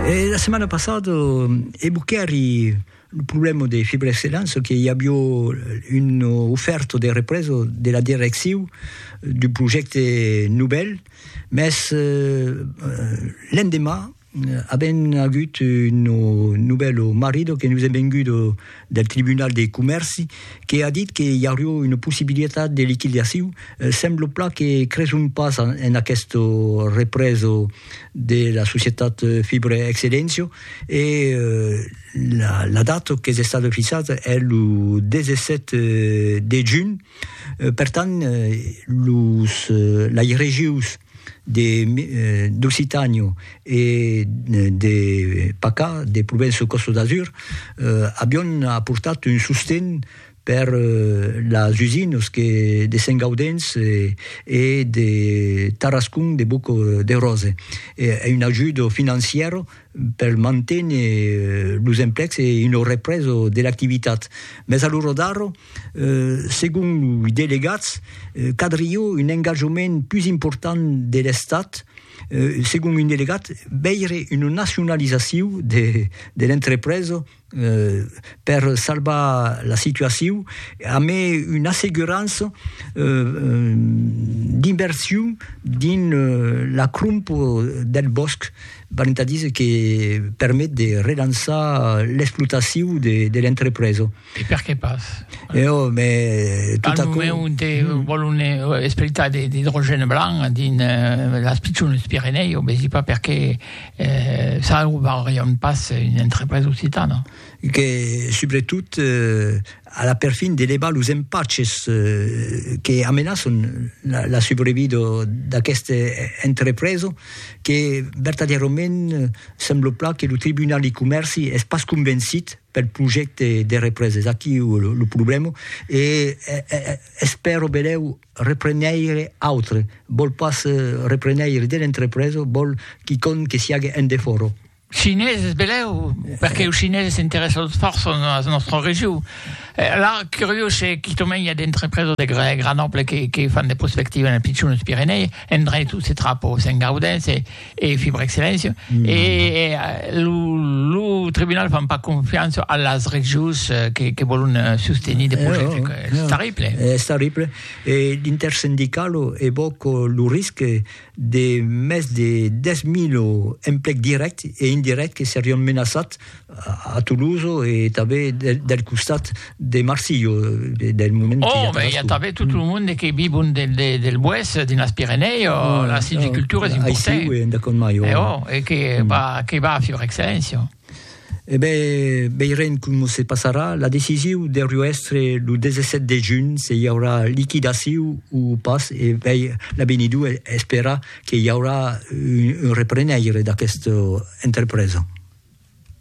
E la setmana passada evoquèri lo problèma de Fibre Excellence que i avió una ofèrta de represa de la direcciu d'un projècte novèl, mès l'endemà avèm agut una novèla marrida que nos es venguda del Tribunal de Comèrci que a dit que i aurió una possibilitat de liquidaciu, sembla plan que creson pas en aqueste reprèso de la societat Fibre Excellencio e la data qu'es estada fixada es lo 17 de junh. Per tant, los lairegius. de d'Occitànio e de Pacà, de Provenço Costa d'Azur, avion aportat un sosten per las usinas que de Sent Gaudens e de Tarascon de Boc de Rose, un ajudo financièro per manténer los emplecs e una represa de l'activitat. Mès a l'ora d'ara, segon loi delegats, cadrió un engajament pus important de l'Estat, segon un delegat, veire una nacionalizacion de l'entrepresa, per salvar la situacion amé una assegurança d'inversion dins la cromp del bòsc, valent a díser que permet de relançar l'explotacion de l'entrepresa. E per qué pas? E ò, mè tot aquò. Al moment ont te vòlon espletar de l'idrogène blanc dins las pichones Pirenèus, vesi pas per qué Salvarion pas una entrepresa occitana. Que, subretot, a la perfin de levar los empaches que amenaçon la subrevida d'aquesta entrepresa, que vertadièrament sembla plan que lo Tribunal de Comèrci es pas convencit pel projècte de represa. Es aquí lo problèma e espèro benlèu Repreneire autre, vòl pas repreneire de l'entrepresa, vòl quicòm que siague en defòra. Chineses, belèu, perque los chineses s'interèssan fòrça a la nòstra region. La curiós se quicòm i a d'entrepresa de gran ample que fan de prospectiva en Pichon, los Pirenèi, en Drentó se trapa, o Sent Gaudens e. e fi per excellència mm. e eh, lo, lo tribunal fan pas confiança a las regius eh, que, que volen eh, sostenir de eh, projectes oh, és oh. terrible és terrible e l'intersindical evoca lo risc de més de 10.000 emplecs directs e indirects que serion menaçats a Toloso e tanben del costat de Marsillo del moment que i a Tarascon. Oh, i a tanben tot lo monde que vivon del boès dins las Pirenèi, la silvicultura es importanta. Aicí, en dacòm mai. E oh, e que va a fior excelléncia. E ben, veirem com se passarà. La decisiu deurió èstre lo 17 de junh se i aurà liquidaciu o pas e vei l'avenidor esperar que i aurà un reprenèire d'aquesta entrepresa.